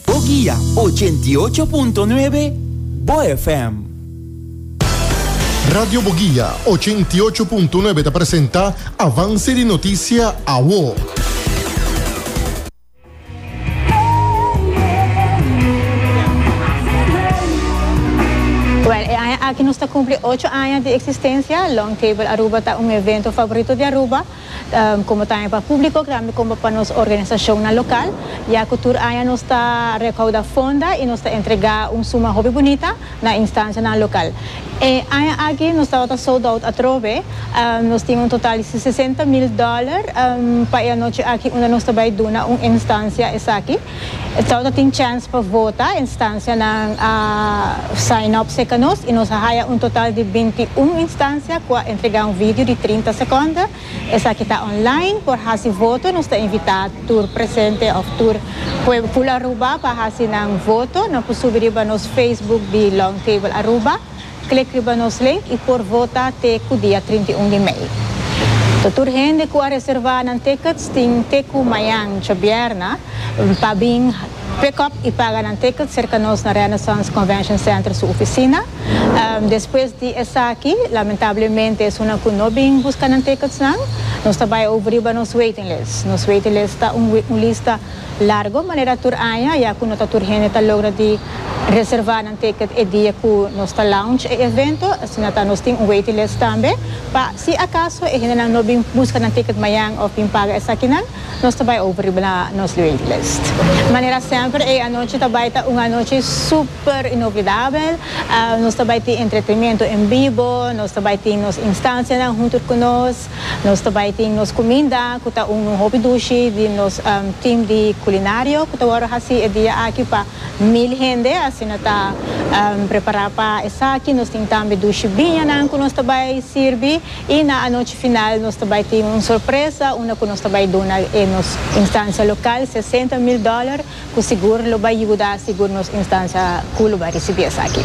Bo guia ochenta i ocho punto nuebe Bo FM. Radio Bo Guia ochenta i ocho punto nuebe ta presenta Avance di Noticia Awo. Well, e aña aki nos ta cumpli ocho aña di existencia. Long Table Aruba ta un evento favorito di Aruba. Como tambe pa publico grambi como pa nos organisacionnan local, ya cu tur aña nos ta recauda fonda y nos ta entrega un suma hopi bunita na instancianan local. E aña aki nos tabata sold out atrobe, nos tin un total di sesenta mil dollar pa e anochi aki unda nos ta bay duna un instancia esaki. E tawata tin chèns pa vota, e instansianan a sign up serka nos i nos a haya un total di binti un instansia ku a entregá un video di trinta sekònde. Esaki ta online. Por hasi voto nos ta invitá tur presente òf tur pueblo Aruba pa hasi nan voto. Nan por subi riba nos Facebook di Long Table Aruba. Klikriba nos link y por vota te ku dia trinta i un di mei. To tur hende ku a reserva nan tickets tin te ku mañan, djobièrna, pa bin pick up y paga nan tickets serka nos na Renaissance Convention Center su oficina. Despues di esaki, lamentablemente esunnan ku no bin buska nan tickets nan, nos ta bai obriba nos waiting list. Nos waiting list ta un lista. Largo manera tur aña ya cu no ta tur hende ta logra di reserva nan ticket e dia cu nos ta launch e evento, asina ta nos tin un waiting list tambe. Pa si acaso e hendenan no bin busca nan ticket mayan of bin paga esakinan, nos ta bay over riba na nos waiting list. Manera semper e anochi ta bay ta un anochi super inoblidabel. Nos ta bay tin entretenimento en bibo, nos ta bay tin nos instancianan hunter cu nos. Nos ta bai tin nos cuminda cu ta un un hopi dushi di nos team di culinario cu ta worde haci e dia aki pa mil hende asina ta prepara pa esaki nos tin tambe dushi biñanan cu nos ta bai sirbi y na anochi final nos ta bai tin un sorpresa unda cu nos ta bai duna e nos instancia local sesenta mil dollar cu sigur lo bai yuda sigur nos instancia cu lo bai ricibi esaki.